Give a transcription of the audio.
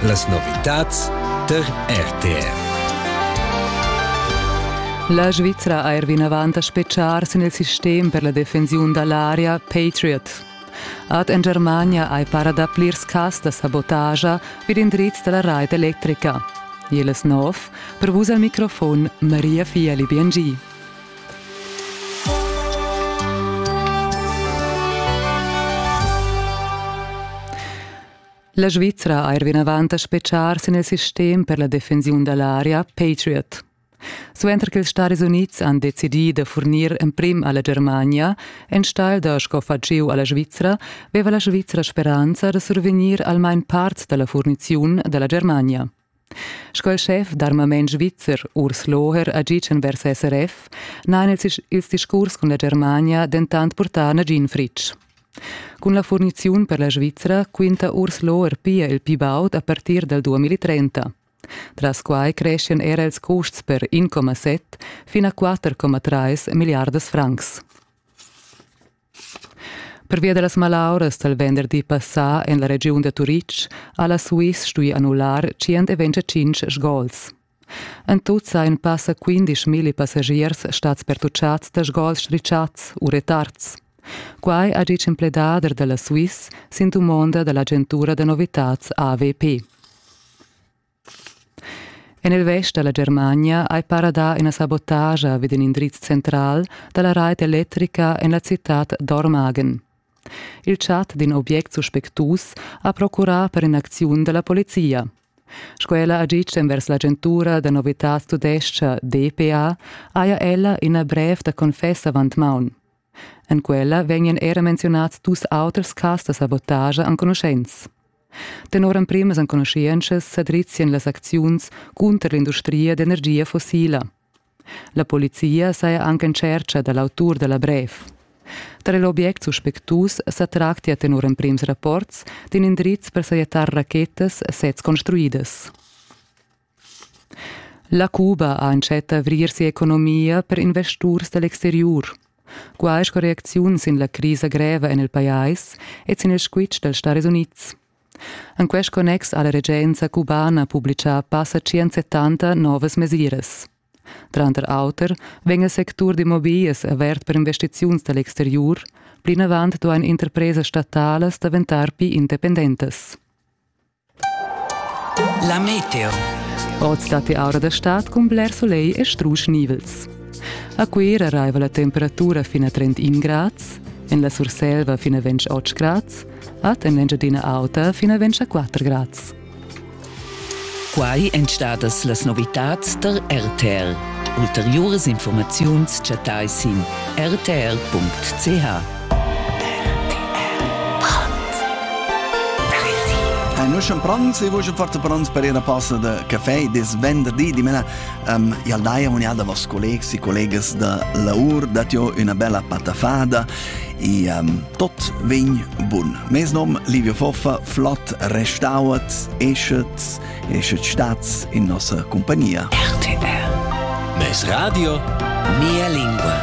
Las novitads tar RTR. La Svizra ha er vinavant a spetgar sin il sistem per la defensiun da l'aria Patriot. Ad en Germania hai para da plirs cas da sabotagia vid indrizs da la rait electrica. Jeles nov, per vus al microfon Maria Fiali Biengi. La Svizra ha er vinavant a speciar sin il sistem per la defensiun da l'aria Patriot. Suenter che ils Stadis Unids han decidì da furnir emprim a la Germania, enstagl da sco faciu a la Svizra, veva la Svizra speranza da survegnir almain part da la furniziun da la Germania. Sco il schef d'armament svizzer Urs Loher ha gitg envers SRF n'han els ils discurs cun la Germania dentant purtà nagin fritg. Cun la furniziun per la Svizra quinta Urs Loher pia il pli baud a partir dal 2030. Tras quai creschian era ils custs per 1,7 fin a 4,3 milliardas francs. Pervia da las malauras dal venderdi passà en la regiun da Turitg ha la Swiss stuì annullar 125 sgols. En tut sajan passa 15.000 passagiers stads pertuccads da sgols strischads u retards. Quai ha ditg in pledader da la Swiss sin dumonda da l'agentura da novitads AVP. En il vest da la Germania hai para dà ina sabotagia vid in indriz central da la rait electrica en la citad Dormagen. Il chat d'in obiect suspectus ha procurà per in'acziun da la polizia. Sco ella ha ditg envers l'agentura da novitads tudescha DPA, haja ella ina brev da confess avant maun. En quella vegnan era menzionads dus auters cas da sabotagia enconuschents. Tenor emprimas enconuschientschas sadrizian las acziuns cunter l'industria d'energia fossila. La polizia saja anche in tschercha da l'autur da la brev. Tar l'obiect suspectus sa tractia tenor emprims rapports d'in indriz per sajettar rachetas sez construidas. La Cuba ha entschet d'avrir si'economia per investurs da l'exteriur. Quai sco reacziun sin la crisa greva en il pajais e sin il squitsch dals Stadis Unids. En quest connex ha la regenza cubana publitgà passa 170 novas mesiras. Tranter auter vegn il sectur d'immobiglias avert per investiziuns da l'exteriur, plinavant duain interpresas statalas daventar pli independentas. La meteo. Oz datti aura da stad cun bler solegl e strusch nivels. A Cuira raiva la temperatura fin a 31 grads, en la Surselva fin a 28 grads, ad en l'Engiadina Auta fin a 24 grads. Quai èn stadas las novitads tar RTL. Ulteriuras informaziuns chattai sin rtl.ch. Hai nus schon pranz e vus fart pranz per ir a passa de caffè des venderdi dimena um, jal dai amonial da vos collegs e collegas da laur dat jo una bella patafada e um, tot vegn bun. Mes nom Livio Foffa, flott restauert, eschet, eschet stats in nossa compagnia. RTR. Mes radio, mia lingua.